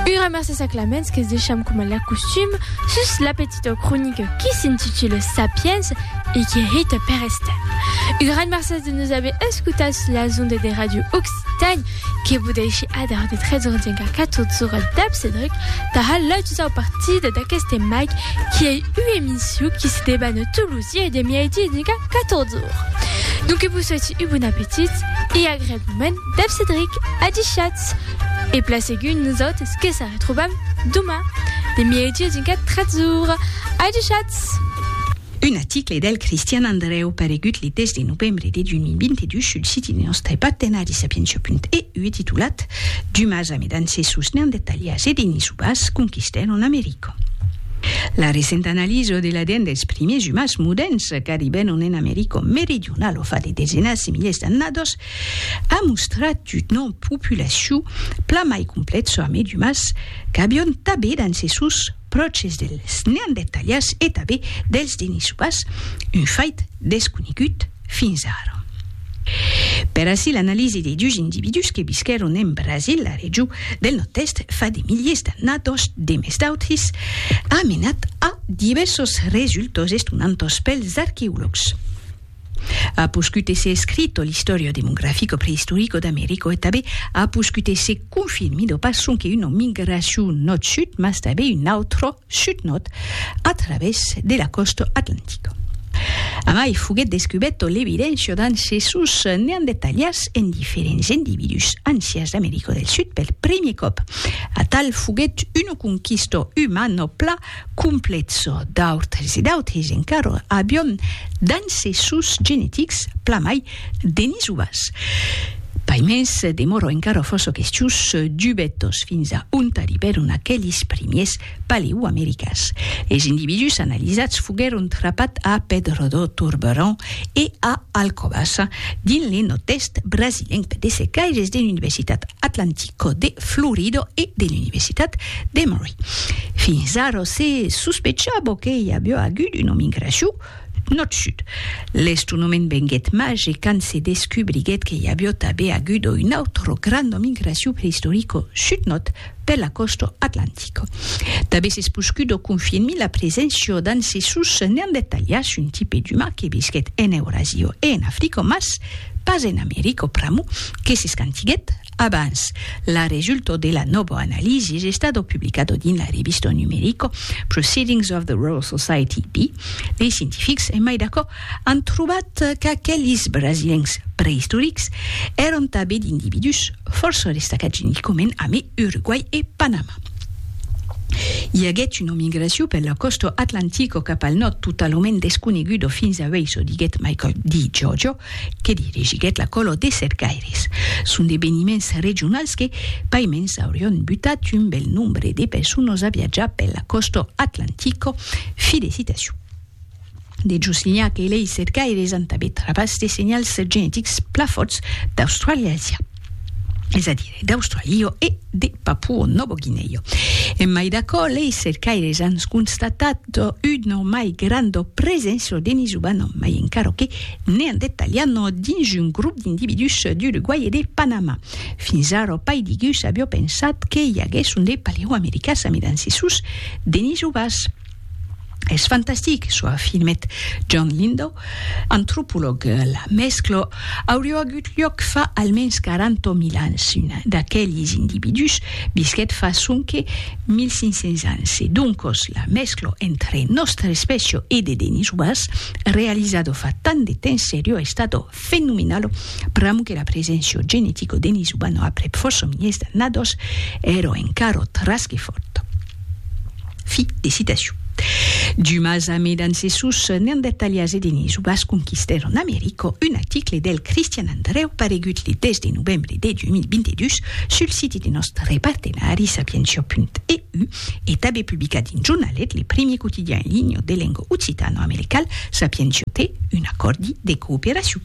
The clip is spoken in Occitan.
Ura massa s'aclaments que's deisham coma l'acostum sus la petita cronica qui s'intitula Sapiens e qui hèit per Estève. Un gran mercés de nos aver escotats sus las ondas de Radio Occitània que vos dèishi adar de 13h05 a 14h dab Cedric tara la dusau partida d'aqueste Mike qui ei ua emission qui se debana tous los dies de mièidi e 14h. Donc vos soiti un bon apetit e agreablement. Dèv Cedric, adishatz! E plan segun nosautres que se retrobam doma, de miègi a dincat tretz ora. Adishatz! Un aticle del Cristian Andrèu paregut le 10 de novembre de 2022 sul siti de nòstre partenari Sapientia.eu e titulat Dumas a Medances sus Neandertalias e Denisovas conquistèron America. La recenta analiso de l'ADN dels primiers umans moderns qu'arribèron en America meridionala fa de desenas de milhers d'annadas a mostrat una populacion plan mai complèxa amb d'umans qu'avion tanben d'ancessors pròches dels neandertalians e tanben dels denisovans, un fait desconegut fins ara. Per aicí l'analisi de dus individús que visquèron en Brasil, la region del nòrd-èst, fa de miliers d'annados demest d'autres, a menat a divèrsos resultats estonantas pels arqueològs. A poscut èsser escrito l'Historio demografico prehistorico d'Americo e tanben a poscut èsser confirmido pas sonque una migracion nòrd-sud, mas tanben un autre sud-nòrd a travèrs de la còsta atlantica. A mai, foguèt descubèrta l'evidéncia d'ancessors neandertalians en diferents individús ancians d'Americo del Sud per primièr còp. Atal foguèt una conquista umana plan Complezo d'autres e d'autres encara avion dins se sòus genetics plan mai denisubas. Paimens demòro encara fòrça questius dubetós fins a ont arribèron aquelis primiers paleoamericans. Es individús analizats foguèron trapat a Pedro do Turberão e a Alcobaça, dins le nòrd-èst brasilenc de secaires de l'Universitat Atlântico de Florida e de l'Universitat d'Emory. Fins ara se sospechava que i aviá agut una migracion nòrd-sud. L'estonament venguèt màger quand se descubriguèt que i aviá tanben agut una autra granda migracion preistorica sud-nòrd per la còsta atlantica. Tanben s'es poscuda confirmir la preséncia d'ancessors neandertalians, un tipe d'umà que visquèt en Eurasia e en Africa, mas pas en America pr'amor que s'escantiguèt Abans, l'arresulto de la nòva analisis es stato publicato dins la revista numerico Proceedings of the Royal Society B. Dei scientifics, en mai d'aquò, an trobat qu'aquelis brasilencs preistorics èron tanben d'individús fòrça destacats geneticament amé Uruguai e Panama. I aguèt una migracion per la còsta atlantica cap al nòrd totalament desconeguda fins a uèi, çò diguèt Michael D. Giorgio, que dirigiguèt la color de Cercaires. Son d'eveniments regionals que, paimens, aurion butat un bèl nombre de personas a viatjar per la còsta atlantica. Felicitacion! De Juslinhac e lei Cercaires an tanben travas de senhals genetics pla fòrts d'Australàsia. es a dire d'Australio e de Papuo Novo Guineo. En mai d'aquò, lei cercaires an constatat una mai granda preséncia de Nisuban, mai encara que ne an detalhat dins un grop d'individús d'Uruguai e de Panama. Fins ara, pas digus aviá pensat que i aguèsson de paleoamericas amidancissus de Nisubas. Es fantastic, çò afirmèt John Lindow, antropològ. La mèscla auriá agut luòc fa almens 40.000 ans. Un d'aqueles individús visquèt fa sonque 1.500 ans e doncas la mèscla entre nòstra espècia e de denisoas, realizada fa tant de temps seriá estada fenomenalo, pr'amor que la preséncia genetica de Nizubano aprèp fòrça miliers d'annadas èra encara tras que fòrta. Fi de citacion. Dumas a mes d'ancessors nean detalhats e de Nizubas conquistèron America, un article del Cristian Andrèu paregut le 10 de novembre de 2022 sul site de nòstre partenari Sapientia.eu, E tabé publicar dins jornalet, le primier quotidian en linha de lenga occitano-americal, Sapientiote, un acòrdi de cooperacion.